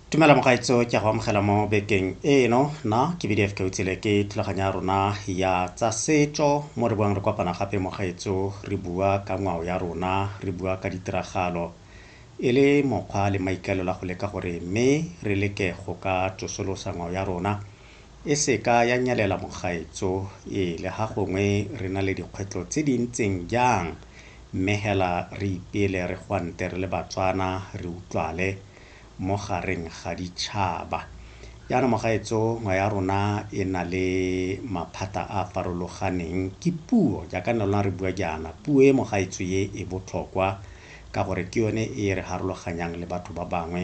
tumela mogaetso ke a go amogela mo bekeng eno na ke bdf ke utsele ke thulaganyo ya rona ya tsa setso mo re buang re kopana gape mogaetso re bua ka ngwao ya rona re bua ka ditiragalo e le mokgwa le maikaelelo a go leka gore mme re leke go ka tsosolosa ngwao ya rona e se ka ya nyelela mogaetso e le ga gongwe re na le dikgwetlo tse di ntseng jang mme hela re ipele re gwante re le Batswana re utlwale mo gareng ga ditšhaba. Jaana mogaetso ngwe ya rona e na le maphata a a farologaneng ke puo jaaka ne lona re bua jaana puo e mogaetso ye e botlhokwa ka gore ke yone e re harologanyang le batho ba bangwe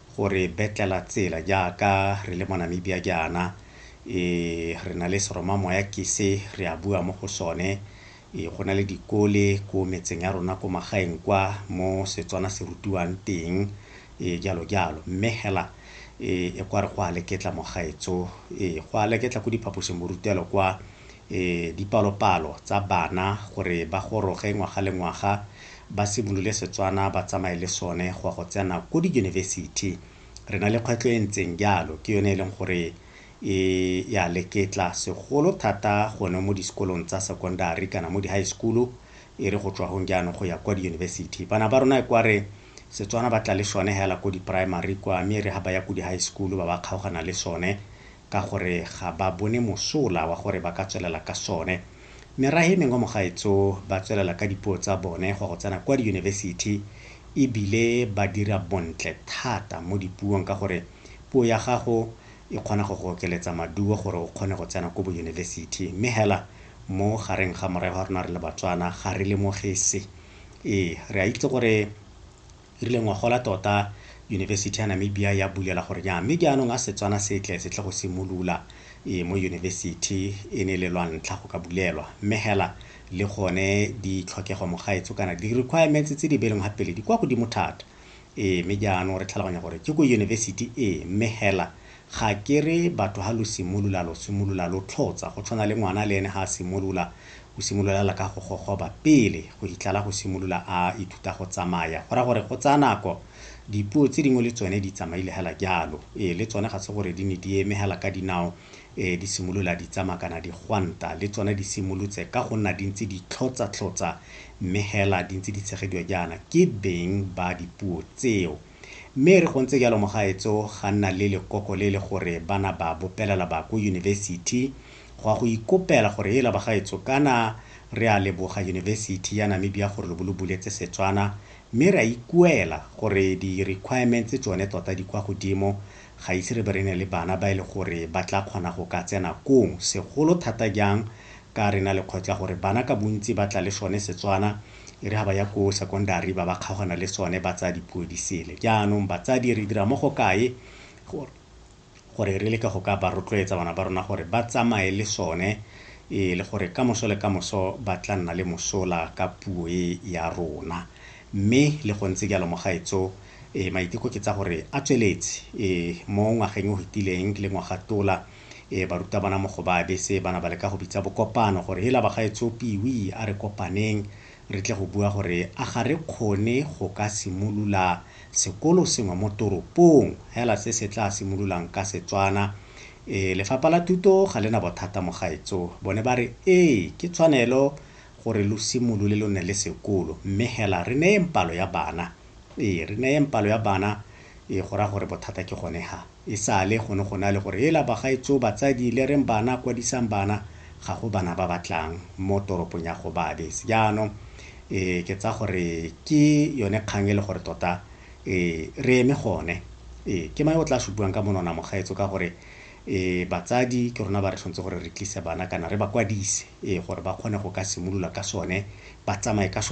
go re betlela tsela jaaka re le mo Namibia jaana. E, re na le seromamoya ke se re a bua mo go sone. E, go na le dikole ko metseng ya rona ko magaeng kwa mo Setswana se rutiwang teng, e, jalo jalo. Mme hela, e, e kwa re go a leketla mogaetso. E, go a leketla ko diphaposing borutelo kwa. dipalopalo tsa bana gore ba goroge ngwaga le ngwaga ba simolole Setswana ba tsamaye le sone go ya go tsena ko diyunibesithi. Re na le kgwetlho e ntseng jalo, ke yone e leng gore e ya leketla segolo thata gone mo disekolong tsa secondary kana mo di-high school-u e re go tswa gong jaanong go ya kwa diyunibesithi. Bana ba rona e kware Setswana ba tla le sone hela ko di-primary kwa mme e re ha ba ya ko di-high school-u ba ba kgaogana le sone. ka gore ga ba bone mosola wa gore ba ka tswelela ka sone. Merahe mengwe mo gaetso ba tswelela ka dipuo tsa bone go ya go tsena kwa diyunibesithi e bile ba dira bontle thata mo dipuong ka gore puo ya gago e kgona go go okeletsa maduo gore o kgone go tsena ko boyunibesithi. Mme hela mo gareng ga morahe wa rona re le Batswana ga re lemoge se. Ee, re a itse gore e rile ngwagola tota Yunibesithi ya Namibia ya bulela gore nya mme jaanong a Setswana se tle se tle go simolula e mo yunibesithi e ne le lwa ntlha go ka bulelwa mme hela le gone ditlhokego mogaetso kana di-requirements tse di beleng ga pele di kwa godimo thata e mme jaanong re tlhaloganya gore ke ko yunibesithi e mme hela Ga ke re batho ha lo simolola, lo simolola lo tlhotsa. Go tshwana le ngwana le ene ha a simolola, o simolola fela ka go gogoba pele go fitlhela go simolola a ithuta go tsamaya. Go raya gore go tsaya nako. Dipuo tse dingwe le tsone di tsamaile fela jalo. Ee, le tsone ga se gore di ne di eme fela ka dinao di simolola di tsamaya kana di gwanta. Le tsone di simolotse ka go nna di ntse di tlhotsa-tlhotsa mme fela di ntse di tshegediwa jaana ke beng ba dipuo tseo. Mme e re go ntse jalo mogaetso ga nna le lekoko le le gore ba na ba bopelela ba ko yunibesithi go a go ikopela gore ela bagaetso kana re a leboga yunibesithi ya Namibia gore lo bo lo buletse Setswana mme re a ikuela gore di requirements tsone tota di kwa godimo ga ise re be re ne le bana ba e le gore ba tla kgona go ka tsena kong segolo thata jang ka re na le kgwetlho ya gore bana ka bontsi ba tla le sone Setswana e re ga ba ya ko secondary ba ba kgaogana le sone ba tsaya dipuo di sele jaanong batsadi re dira mo go kae gore re leke go ka ba rotloetsa bana ba rona gore ba tsamaye le sone e le gore ka moso le ka moso ba tla nna le mosola ka puo e ya rona mme le go ntse jalo mogaetso e maiteko ke tsa gore a tsweletse e mo ngwageng o fetileng le ngwaga tola Ee, barutabana mo go ba bese ba na ba leka go bitsa bokopano gore hela bagaetsho Piwi a re kopaneng re tle go bua gore a ga re kgone go ka simolola sekolo sengwe mo toropong hela se se tla simololang ka Setswana. Ee, lefapha la thuto ga le na bothata mo gaetso. Bone ba re ee, ke tshwanelo gore lo simolole lo nne le sekolo mme hela re neyeng palo ya bana. Ee, re neyeng palo ya bana, ee go raya gore bothata ke gone ha. e sale go ne go na le gore hela bagaetsoo batsadi le reng bana kwadisang bana ga go bana ba ba tlang mo toropong ya Gobabis jaanong e ke tsa gore ke yone kgang e le gore tota e re eme gone e ke mae o tla se buang ka monona mogaetso ka gore e batsadi ke rona ba re tshwanetse gore re tlise bana kana re ba kwadise e gore ba kgone go ka simolola ka sone ba tsamaye ka sone